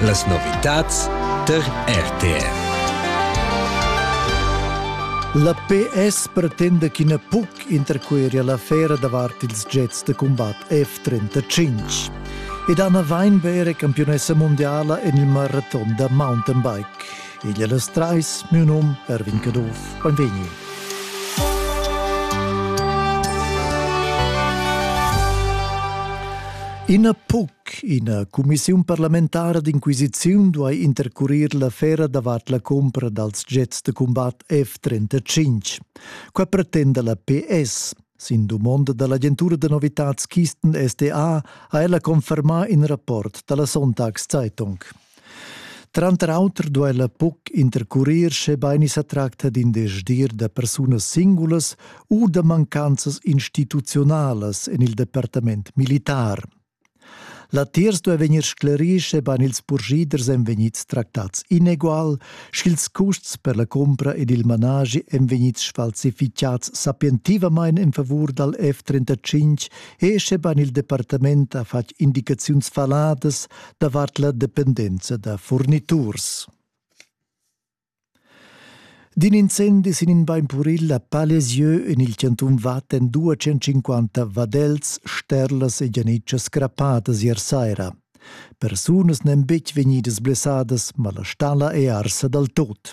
Las novitads tar RTR. La PS pretenda ch'ina puc interqueria l'affera davart ils jets da cumbat F-35 ed Anna Weinberger campiunessa mondiala en il maraton da mountainbike. Igl è las trais, miu num Erwin Caduff. Benvegni. Ina puc, ina cumissiun parlamentara d'inquisiziun duai intercurir l'affera davart la cumpra dals jets da cumbat F-35. Qua pretenda la PS. Sin dumonda dall'agentura da novitads Kisten SDA ha ella confermà in rapport dalla Sonntagszeitung. Tranter auter duella buc intercurir schebein i sa tracta d'in desdir da persunas singulas u da mancanzas instituzionalas en il departament militar. Latiers duei vegnir sclerì, schebein ils purschiders ein vegnids tractats inegual, sch'ils custs per la cumpra ed il managi ein vegnids sfalsificads sapientivamain en favur dal F-35 e schebein il departament ha fatg indicaziuns faladas davart la dependenza da furniturs. D'in incendi sin in bain puril a Palesieu en il chantun Vatten 250 vadels, sterlas e gianitschas crappadas ier saira. Persunas n'èn betg vegnidas blessadas, ma la stalla è arsa dal tot.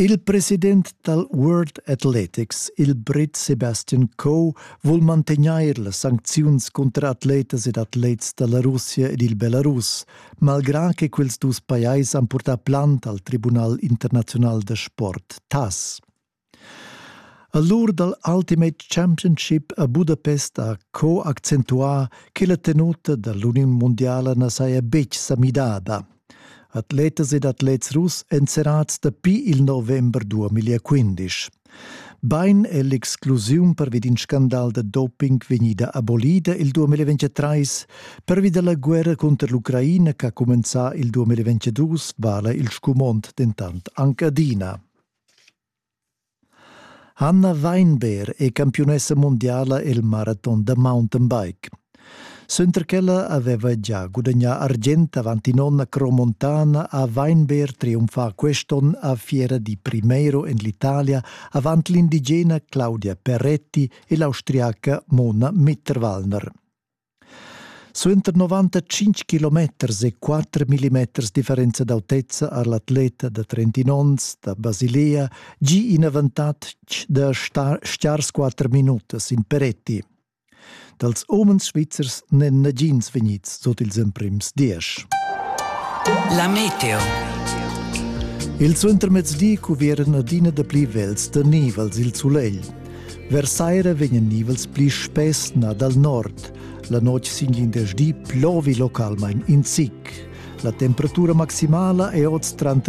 Il president dal World Athletics, il Brit Sebastian Coe, vul mantegnair las sancziuns cunter atletas ed atlets da la Russia ed il Belarus, malgrà che quels dus pajais han purtà plant al Tribunal internaziunal da sport, TAS. A l'ur dal Ultimate Championship a Budapest ha Co accentuà che la tenuta da l'uniun mundiala na saja betg sa midada. Atletas ed atlets russ èn serrads dapi il november 2015. Bain è l'exclusiun pervi d'in scandal da doping vegnida abolida il 2023. Pervi da la guerra cunter l'Ucraina ch'ha cumenzà il 2022 vala il scumond dentant anc adina. Hanna Weinberg è campiunessa mundiala el maraton da mountainbike. Suenter ch'ella aveva gia gudagnà argient avant in'onda cromontana ha Weinberg triumfà quest'onn a fiera di Primero en l'Italia avant l'indigena Claudia Peretti e l'austriaca Mona Mitterwallner. Suenter 95 kilometers e 4 millimeters differenza d'autezza ha l'atleta da 31 onns da Basilea gi in avantatg da stiar squatter minutas in Peretti. Dals umens svizzers n'èn nagins vegnids sut ils emprims diesch. La meteo. Il suentermezdi cuvieran adina dapli vels da niv als il sulegl. Versaira vegnan nivels pli spess na dal nord. La notg sin glindesdi plovi localmain in zic. La temperatura maximala è oz tranter